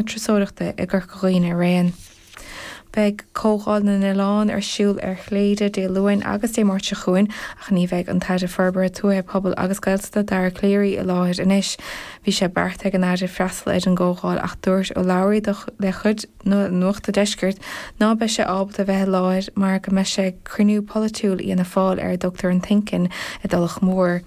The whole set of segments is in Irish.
turasóireachta i gCorca Dhuibhne araon. Beidh Comhdháil na nOileán ar siúl ar Chléire Dé Luain agus Dé Máirt seo chugainn ach ní bheidh an tAire Forbartha Tuaithe, Pobail agus Gaeltachta, Dara Calleary, i láthair anois. Bhí sé beartaithe ag an Aire freastal ar an gcomhdháil ach dúirt urlabhraí dá chuid le Nuacht an Deiscirt ná beidh sé ábalta bheith i láthair mar go mbeidh sé ag cruinniú polaitiúil Fhianna Fáil ar a dtugtar an think-in i dTulach Mhór.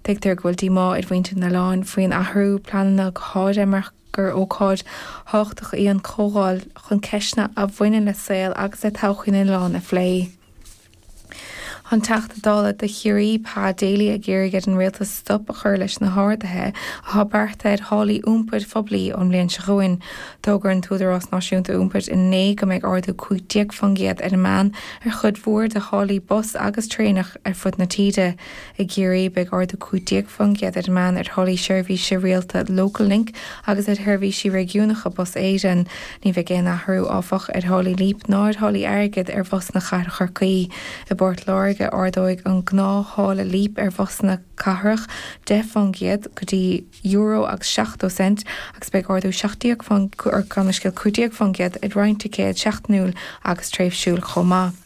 Tuigtear go bhfuil díomá ar mhuintir na n-oileán faoin athrú pleananna go háirithe mar. gur ócáid thábhachtach í an chomhdháil chun ceisteanna a bhaineann le saol agus le todhchaí na n-oileán a phlé. Tá an Teachta Dála do Chiarraí, Pa Daly ag iarraidh ar an Rialtas stop a chur leis na harduithe atá beartaithe ar tháillí iompair phoiblí ón mbliain seo chugainn. D'fhógair an tÚdarás Náisiúnta Iompair inné go mbeidh ardú 15% ar an meán ar chuid mhór de tháillí bus agus traenach ar fud na tíre. I gCiarraí, beidh ardú 15% ar an meán ar tháillí seirbhísí rialta Local Link agus ar sheirbhísí réigiúnacha Bus Éireann. Ní bheidh aon athrú, áfach, ar tháillí Leap ná ar tháillí airgid ar bhusanna cathrach Chorcaí. I bPort Láirge, ardóidh an gnáth-tháille Leap ar bhusanna cathrach 10 fán gcéad, go dtí euro agus seachtó cent, agus beidh ardú 17, gabh mo leithscéal, 15 fán gcéad ar roinnt ticéad seachtainiúil agus tréimhsiúil chomh maith.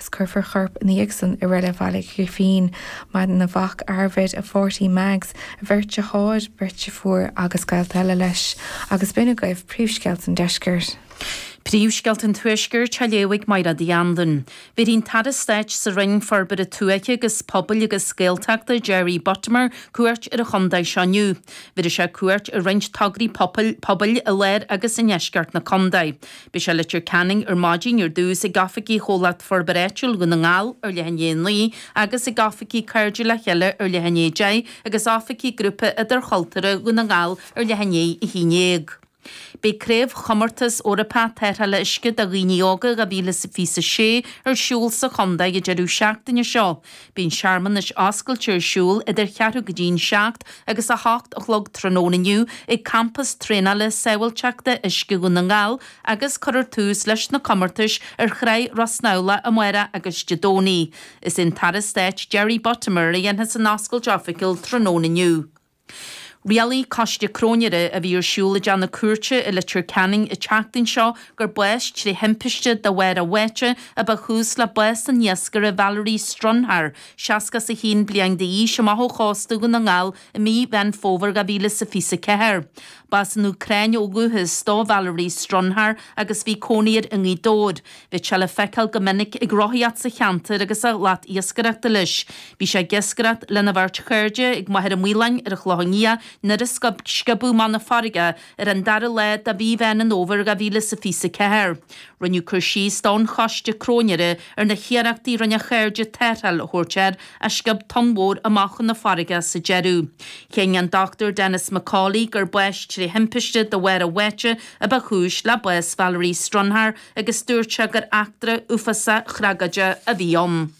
Cuirfear corp an Iadsan i Reilig Bhaile Ghrífín. Maireann a mhac, Arvid, a pháirtí Mags, a bheirt deartháir, beirt deirfiúr agus gaolta eile leis. Agus b'in agaibh príomhscéalta an Deiscirt. Príomhscéalta an Tuaiscirt á léamh ag Maighread Uí Andain. Bhéarfaidh an tAire Stáit sa Roinn Forbartha Tuaithe agus Pobail agus Gaeltachta, Jerry Buttimer, cuairt ar an chontae seo inniu. Bhéarfaidh sé cuairt ar roinnt tograí pobail i lár agus i ndeisceart na contae. Beidh sé i Leitir Ceanainn ar maidin ar dtús, ag oifigí Chomhlacht Forbartha Áitiúil Dhún na nGall ar leath i ndiaidh a naoi agus ag oifigí Cairde le Chéile ar leath i ndiaidh a deich agus oifigí Grúpa Idirchultúrtha Dhún na nGall ar leath i ndiaidh a haon déag. Beidh Craobhchomórtas Eorpach Tarrthála Uisce do Dhaoine Óga 2026 ar siúl sa chontae an deireadh seachtaine seo. Beidh an searmanas oscailte ar siúl idir cheathrú go dtí'n seacht agus a hocht a chlog tráthnóna inniu ag Campas Traenála Sábháilteachta Uisce Dhún na nGall agus cuirfear tús leis na comórtais ar Thráigh Ros Neamhlach amáireach agus Dé Domhnaigh. Is é an tAire Stáit Jerry Buttimer a dhéanfas an oscailt oifigiúil tráthnóna inniu. Rialaigh coiste cróinéara a bhí ar siúl i dteach na cúirte i Leitir Ceanainn an tseachtain seo gur bás tré thimpiste de bharr a bháite a ba chúis le bás an iascaire Valerii Strunhar, seasca is a haon bliain d'aois, amach ó chósta Dhún na nGall i mí Mheán Fómhair 2024. B'as an Úcráin ó dhúchas do Valerii Strunhar agus bhí cónaí air i nGaoth Dobhair. Bhí sé le feiceáil go minic ag rothaíocht sa cheantar agus a shlat iascaireachta leis. Bhí sé ag iascaireacht lena bheirt chairde ag Machaire Maoláin ar Chloch an Fhia nuair a sciobadh amach chun na farraige ar an dara lá de mhí Mheán an Fhómhair 2024. Rinneadh cur síos don choiste cróinéara ar na hiarrachtaí a rinne a chairde tarrtháil a thabhairt air ach sciob tonn mhór amach chun na farraige sa deireadh. Chinn an Dr Denis McCauley gur bás trí thimpiste de bharr a bháite a ba chúis le bás Valerie Stronhar, agus dúirt sé gur eachtra uafásach thragóideach a bhí ann.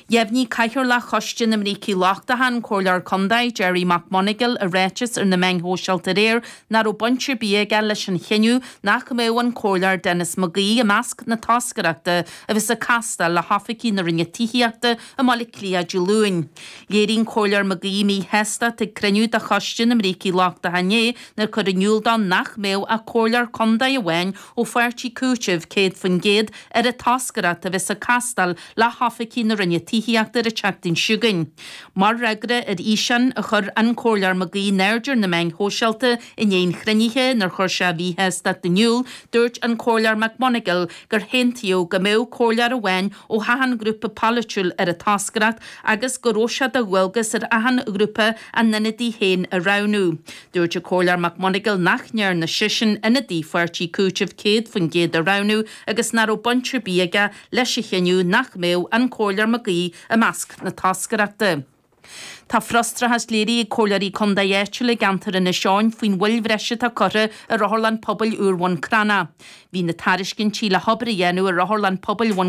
Dheimhnigh Cathaoirleach Choiste na mBrící Lochtacha, an Comhairleoir Contae, Gerry McMonagle i ráiteas ar na meáin shóisialta aréir nach raibh baint ar bith aige leis an chinneadh nach mbeadh an Comhairleoir Denis McGee i measc na toscaireachta a bheas ag castáil le hoifigigh na Roinne Tithíochta i mBaile Átha Cliath Dé Luain. Léirigh an Comhairleoir McGee míshástacht ag cruinniú de Choiste na mBrící Lochtacha inné nuair a cuireadh in iúl dó nach mbeadh ach Comhairleoir Contae amháin ó Pháirtí Cúitimh 100% ar an toscaireacht a bheas ag castáil le hoifigigh na Roinne Tithíochta ar an tseachtain seo chugainn. Mar fhreagra ar fhíseán a chuir an Comhairleoir McGee in airde ar na meáin shóisialta i ndiaidh an chruinnithe inar chuir sé a mhíshástacht in iúl, dúirt an Comhairleoir McMonagle gur haontaíodh go mbeadh Comhairleoir amháin ó achan ghrúpa polaitiúil ar an toscaireacht agus go raibh sé de dhualgas ar achan ghrúpa a n-ionadaí féin a roghnú. Dúirt an Comhairleoir McMonagle nach ndearna seisean ionadaí Pháirtí Cúitimh 100% a roghnú agus nach raibh baint ar bith aige leis an chinneadh nach mbeadh an Comhairleoir McGee i measc na toscaireachta. Tá frustrachas léirithe ag Comhairleoirí Contae áitiúla i gceantar Inis Eoghain faoin mhoill bhreise atá curtha ar Otharlann Pobail úr Bhun Cranncha. Bhí na tairiscintí le hobair a dhéanamh ar Otharlann Pobail Bhun.